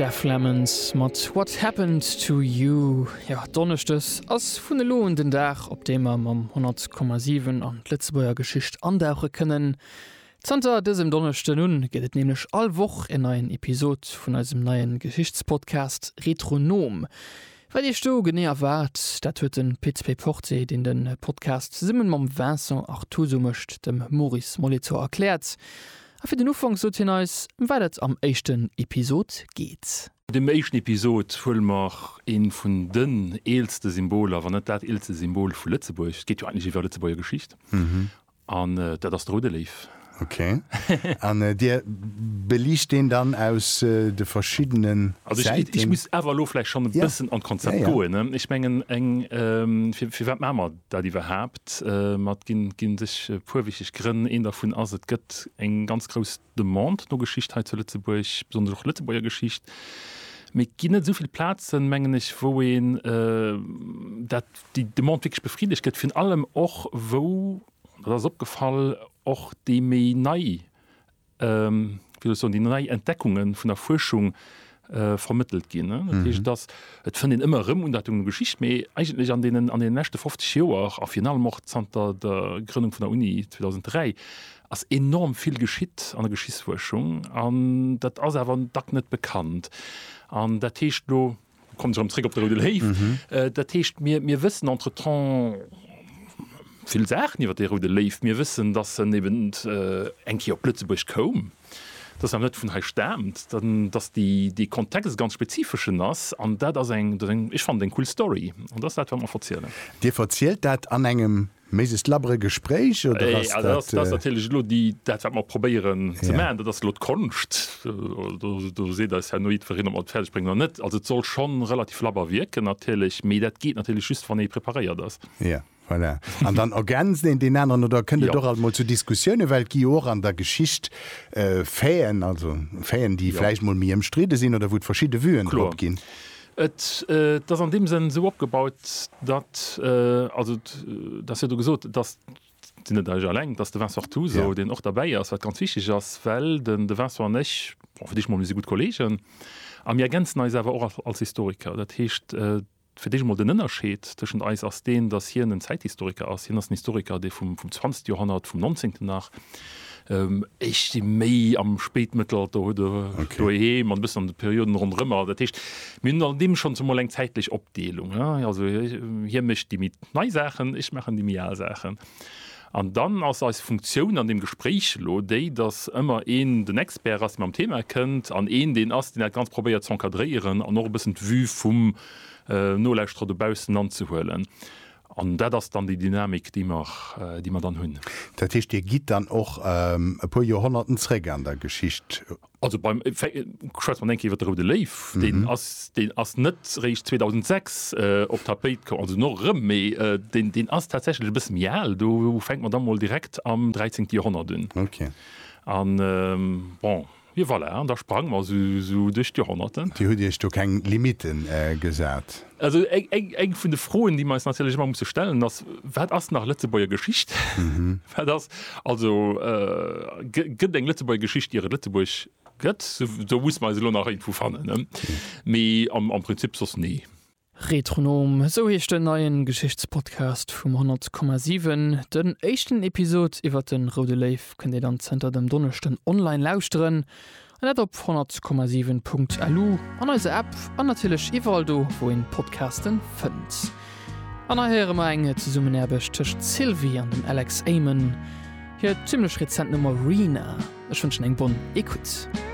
Def Lemons mat What Happened to You. Jo, Donneschdes ass vun elo un den Dag, op deem mer mam 100,7 an d'Lëtzebuerger Geschicht andauche kënnen. Zanter dësem Donneschden un gëtt et nämlech all Woch en neien Episod vun eisem neie Geschichtspodcast Retronom. Wat Iech do genee erwaart, dat huet de Pit Payporté, deen de Podcast zesumme mam Vincent Artuso mécht, dem Maurice Molitor erkläert. A fir den Ufank sot hien eis, ëm wat et am éischten Episod geet. Dem éischten Episod huele mer een vun den eelste Symboler, wann net dat eelste Symbol vu Lëtzebuerg, et geet jo eigentlech iwwer Lëtzebuerger Geschicht, an dat ass de Roude Léiw. Ok. An Dir beliicht deen dann aus de verschiddenen Säiten? Also ech muss awer elo vläicht schonn e bëssen an d'Konzept goen. Ech mengen eng, firwat maache mer dat iwwerhaapt mat ginn, gi sech e puer wichteg Grënn. Een dervun ass, et gëtt eng ganz grouss Demande no Geschicht hei zu Lëtzebuerg, besonnesch och Lëtzebuerger Geschicht. Mee et ginn net esou vill Plazen, mengen ech, wou een dat, déi Demande wierklech befriddegt gëtt, virun allem och wou, dat ass opgefall, och déi méi nei wéi soll ech soen, déi nei Entdeckunge vun der Fuerschung vermëttelt ginn. Dat heescht, et ass, et fënnt een ëmmer erëm un dat Ding Geschicht, mee eigentlech an deenen, an deene leschte 50 Joer a virun allem och zanter der Grënnung vun der Uni 2003 ass enorm vill geschitt an der Geschichtsfuerschung an dat ass awer dacks net bekannt. An dat heescht elo. Kommen erëm zréck op de Roude Léiw. Dat heescht, mir, mir wëssen entretemps vill Saachen iwwer dee Roude Léiw. Mir wëssen, dass en eben eng Kéier op Lëtzebuerg koum, dass en net vun hei staamt, dass déi, dee Kontext e ganz spezifeschen ass. An dat ass eng, dat ass eng, ech fannen dat eng cool Story. An dat ass dat, wat mer verzielen. Dir verzielt dat an engem Mais ist labber e Gespréich oder ass dat? Also dat ass natierlech elo déi, dat wat mer probéieren ze maachen, dat ass elo d'Konscht. Do seet eis herno jiddwereen, ob mer et fäerdeg bréngen oder net. Also et soll schonn relativ labber wierken natierlech, mee dat geet natierlech just wann ee preparéiert ass. Jo, voilà. An dann ergänzt een deen aneren oder kënnt et och alt mol zu Diskussiounen, well et gi jo och an der Geschicht Faiten, also Faiten, déi vläicht mol méi ëmstridde sinn oder wou et verschidde Vuen drop ginn. Et ass an deem Sënn esou opgebaut, datt, also et ass jo do gesot, et ass, sinn net ech alleng, et ass de Vincent Artuso, deen och derbäi ass, wat ganz wichteg ass, well den de Vincent an ech, bon, fir d'éischt emol, mir si gutt Kolleegen a mir ergänzen eis awer och als Historiker. Dat heescht, fir d'éischt emol den Ënnerscheed tëschent eis ass deen, datt hien en Zäithistoriker ass, hien ass en Historiker, dee vum 20. Joerhonnert, vum 19. nach, Ech si méi am Spéitmëttelalter oder doheem an e bëssen an de Perioden ronderëmmer. Dat heescht, mir hunn an deem schonn zemol eng zäitlech Opdeelung. Also hie mécht déi méi nei Saachen, ech maachen déi méi al Saachen. An dann ass eis Funktioun an deem Gespréich elo déi, datt ëmmer een den Expert ass, dee mam Thema kënnt, an een deen ass, deen dat Ganzt probéiert z'encadréieren an och e bëssen d'Vue vum Nolauschterer dobaussen anzehuelen. An dat ass dann déi Dynamik, déi mer dann hunn. Dat heescht, Dir gitt dann och e puer Joerhonnerten zréck an der Geschicht. Also schwätze mer eng Kéier iwwer de Roude Léiw. Deen ass net réischt 2006 op d'Tapéit komm, also no erëm, mee deen ass tatsächlech e bësse méi al. Do fänke mer da mol direkt am 13. Joerhonnert un. An bon. Jo voilà, an da sprange mer esou duerch d'Jorhonnerten. Dir hutt Iech do keng Limite gesat? Also eng vun de Froen, déi mer eis natierlech ëmmer musse stellen, ass, Wat ass nach Lëtzebuerger Geschicht? Wat ass also, gëtt eng Lëtzebuerger Geschicht ier et Lëtzebuerg gëtt? Do musse mer eis elo nach iergendwou fannen, mee am Prinzip soss nee. Retronom, esou heescht den neien Geschichtspodcast vum 100,7. Den éischten Episod iwwert den Roude Léiw kënnt dir dann zënter dem Donneschden online lauschteren, an dat op 100,7.lu, an eiser App an natierlech iwwerall do wou een Podcasten fënnt. An hei héiere mer eng Zesummenaarbecht tëscht Sylvie an dem Alex Amen, hir zimmlech rezent Nummer Rina. Ech wënschen eng bonne écoute.